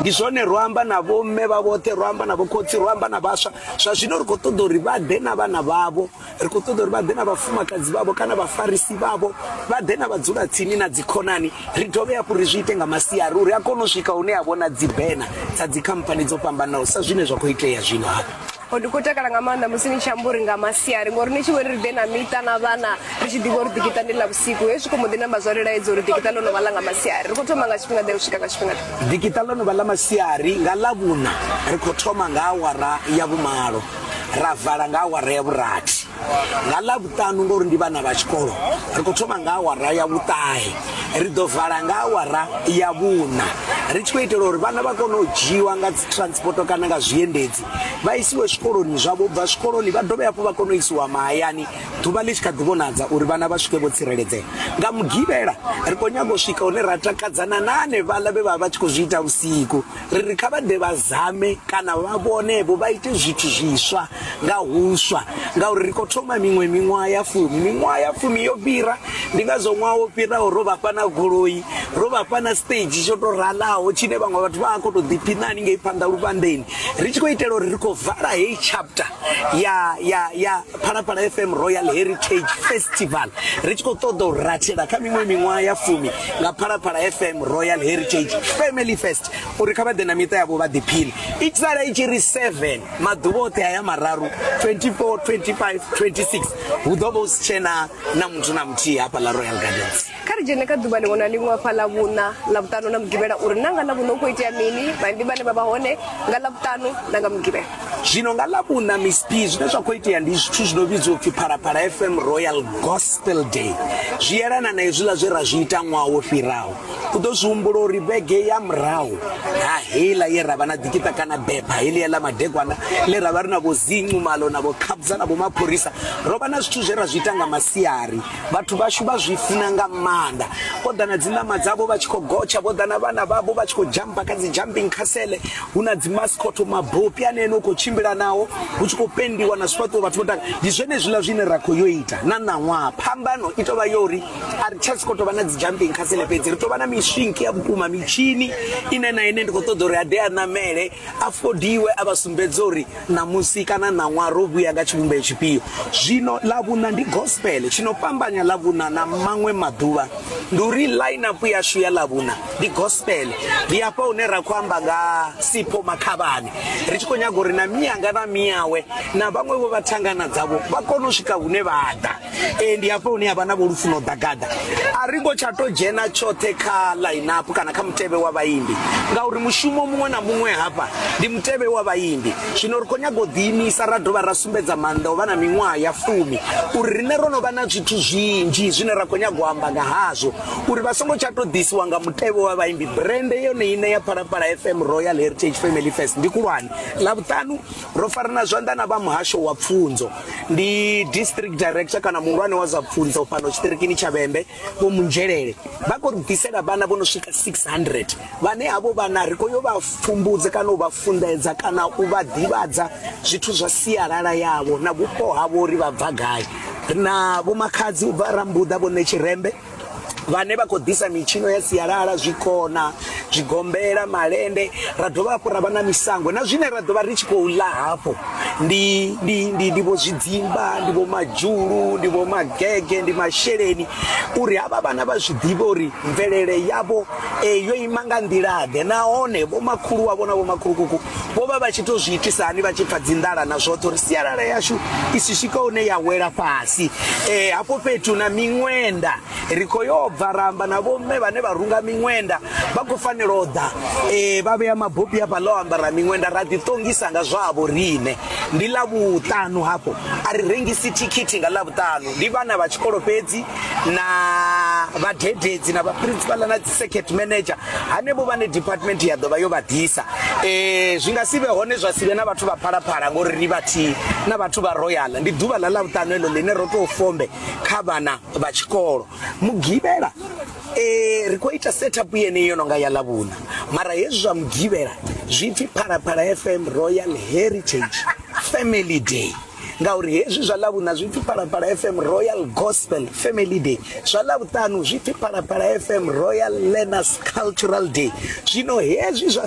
ndi zwone ro amba na vhomme vha vhoṱhe ro amba na vhokhotsi ro amba na vhaswa zwa zwino ri khou ṱoḓa uri vha ḓe na vhana vhavho ri khou ṱoḓa uri vha ḓe na vhafumakadzi vhavho kana vhafarisi vhavho vha ḓe na vhadzula tsini na dzikhonani ri dovhe hafhu ri zwi ite nga masiari uri a kone u swika hune a vhona dzibena dza dzikhamphani dzo fhambanaho sa zwine zwa khou itea zwino hafha o ndi khou takala nga maanḓa musi ni tshi amba uri nga masiari ngori ni tshi vho ri ri ḓe na miṱa na vhana ri tshi ḓivha uri ḓikiṱa ndi ḽa vhusiku hezwi khou mbo ḓi namba zwa lilaedza uri ḓikiṱa ḽo no vha ḽa nga masiari ri khou thoma nga tshifhinga ḓe u swika nga tshifhinga ḓikiṱa ḽo no vha ḽa masiari nga ḽa vhuna ri khou thoma nga awara ya vhumalo ra vala nga awara ya vhurathi nga ḽa vhuṱanu ngori ndi vhana vha tshikolo ri khou thoma nga awara ya vhuṱahe ri ḓo vala nga awara ya vhuna ri tshi khou itela uri vhana vha kone u dzhiiwa nga dzi transport kana nga zwiendedzi vha isiwe zwikoloni zwavho bva zwikoloni vha dovhe hafhu vha kone u isiwa mahayani ḓuvha ḽi tshi kha ḓi vhonadza uri vhana vha swike vho tsireledzea nga mugivhela ri khou nyaga u swika hune ra takadzana na hanevhaḽa vhe vha vha tshi khou zwi ita vhusiku ri ri kha vha ḓe vha zame kana vha vhonevho vha ite zwithu zwiswa nga huswa ngauri ri khou thoma miṅwe miṅwaha ya fumi miṅwaha ya fumi yo fhira ndi ngazwo ṅwaha wo fhiraho ro vhafha na goloi ro vhafha na stage tsho tou ralaho tshine vhaṅwe vhathu vha a khou tou ḓiphiṋa haningei phanḓa luvhanḓeni ri tshi khou itela uri ri khou vala heyi chapter ya ya ya phalaphala fm royal heritage festival ri tshi khou ṱoḓa u rathela kha miṅwe miṅwaha ya fumi nga phalaphala fm royal heritage family fest uri kha vha ḓe na miṱa yavho vha ḓiphile i sala i tshi ri 7 maḓuvha oṱhe aya mararu 24 25 26 hu ḓo vha u si tshena na muthu na muthihi hafha ḽa royal gardens kha ri dzhene kha ḓuvha ḽiṅwe na ḽiṅwe afha ḽa vhuṋa ḽa vhuṱanu na mugivhela uri na nga ḽa vhuṋa u khou itea mini vhaimbi vhane vha vha hone nga ḽa vhuṱanu na nga mugivhela zwino nga ḽa vhuṋa miss p zwine zwa khou itea ndi zwithu zwi no vhidziwa upfhi phalaphala fm royal gospel day zwi yelana na hezwiḽa zwe ra zwi ita ṅwaha wo fhiraho u ḓo zwi humbula uri vhege ya murahu ha heiḽa ye ra vha na ḓikiṱa kana bepha heḽia ḽa madekwana ḽe ra vha ri na vho zincu malo na vho khabza na vho mapholisa ro vha na zwithu zwe ra zwi ita nga masiari vhathu vhashu vha zwi funa nga maanḓa vho ḓa na dziṋama dzavho vha tshi khou gotsha vho ḓa na vhana vhavho vha tshi khou jampa kha dzi jumping castle hu na dzimascot mabopi ane ene u khou tshimbila nawo hu tshi khou pendiwa na zwifhaṱuwo vhathu vho taka ndi zwenezwiḽa zwine ra khou yo ita na ṋaṅwaha phambano i tovha yo uri a ri tsha si khou tovha na dzi jumping castle fhedzi ri tovha na miswinki ya vhukuma mitshini ine na ine ndi khou ṱoḓa uri a ḓe a ṋamele Afhodiwe a vha sumbedza uri ṋamusi kana ṋaṅwaha ro vhuya nga tshivhumbeo tshifhio. Zwino Ḽavhuṋa ndi gospel. Tshi no fhambanya Ḽavhuṋa na maṅwe maḓuvha ndi uri line-up yashu ya Ḽavhuṋa ndi gospel. Ndi hafha hune ra khou amba nga Sipho Makhavhani ri tshi khou nyaga uri na mianga na miawe na vhaṅwe vho vha thangana dzavho vha kone u swika hune vha ḓa. ee ndi hafho hune havha na vho lufuno ḓagada a ri ngo tsha to dzhena tshoṱhe kha line-up kana kha mutevhe wa vhaimbi ngauri mushumo muṅwe na muṅwe hafha ndi mutevhe wa vhaimbi zwino ri khou nyaga u ḓiimisa ra dovha ra sumbedza maanḓa o vha na miṅwaha ya fumi uri riṋe ro no vha na zwithu zwinzhi zwine ra khou nyaga u amba nga hazwo uri vha songo tsha to ḓisiwa nga mutevhe wa vhaimbi brende yone ine ya phalaphala fm royal heritage family fest ndi kulwane ḽa vhuṱanu Ro farana zwanḓa na vha muhasho wa pfunzo. Ndi district director kana muhulwane wa zwa pfunzo fhano tshiṱirikini tsha Vhembe vho Munzhelele. Vha khou ri ḓisela vhana vho no swika 600 vhane havho vhana ri khou yo vha pfumbudza kana u vha funḓedza kana u vha ḓivhadza zwithu zwa sialala yavho na vhupo havho uri vha bva gai. Ri na vhomakhadzi u bva Rambuḓa vho Ṋetshirembe vhane vha khou ḓisa mitshino ya sialala zwikona zwigombela malende ra dovha hafhu ra vha na misango na zwine ra ḓovha ri tshi khou ḽa hafho ndi ndi ndi ndi vho zwidzimba ndi vho madzhulu ndi vho magege ndi masheleni uri havha vhana vha zwi ḓivhe uri mvelele yavho eh, yo ima nga nḓila ḓe nahone vho makhulu wavho na vho makhulukuku vho vha vha tshi to zwi itisa hani vha tshi pfa dzinḓala na zwoṱhe uri sialala yashu i si swika hune ya wela fhasi um hafho fhethu na miṅwenda ri khou yo bva ramba na vhomme vhane vha runga miṅwenda vha khou fanela u ḓa um vha vhea mabopi hafha ḽa o ambara miṅwenda ra ḓiṱongisa nga zwavho riṋe ndi ḽa vhuṱanu hafho a ri rengisi thikhithi nga ḽa vhuṱanu ndi vhana vha tshikolo fhedzi na vhadededzi na vhaprinsipala na circuit manager hanevho vhane department ya ḓovha yo vha ḓisa eh zwi nga sivhe hone zwa sivhe na vhathu vha phalaphala ngori ri vhathihi na vhathu vha royal ndi ḓuvha ḽa ḽa vhuṱanu eḽo ḽine ro tou fombe kha vhana vha tshikolo mugivhela eh ri khou ita setup yene yo no nga ya ḽavhuṋa mara hezwi zwa mugivhela zwi pfi phalaphala fm royal heritage family day ngauri hezwi zwa ḽavhuṋa zwi pfi phalaphala fm royal gospel family day zwa ḽavhuṱanu zwi pfi phalaphala fm royal learners cultural day zwino hezwi zwa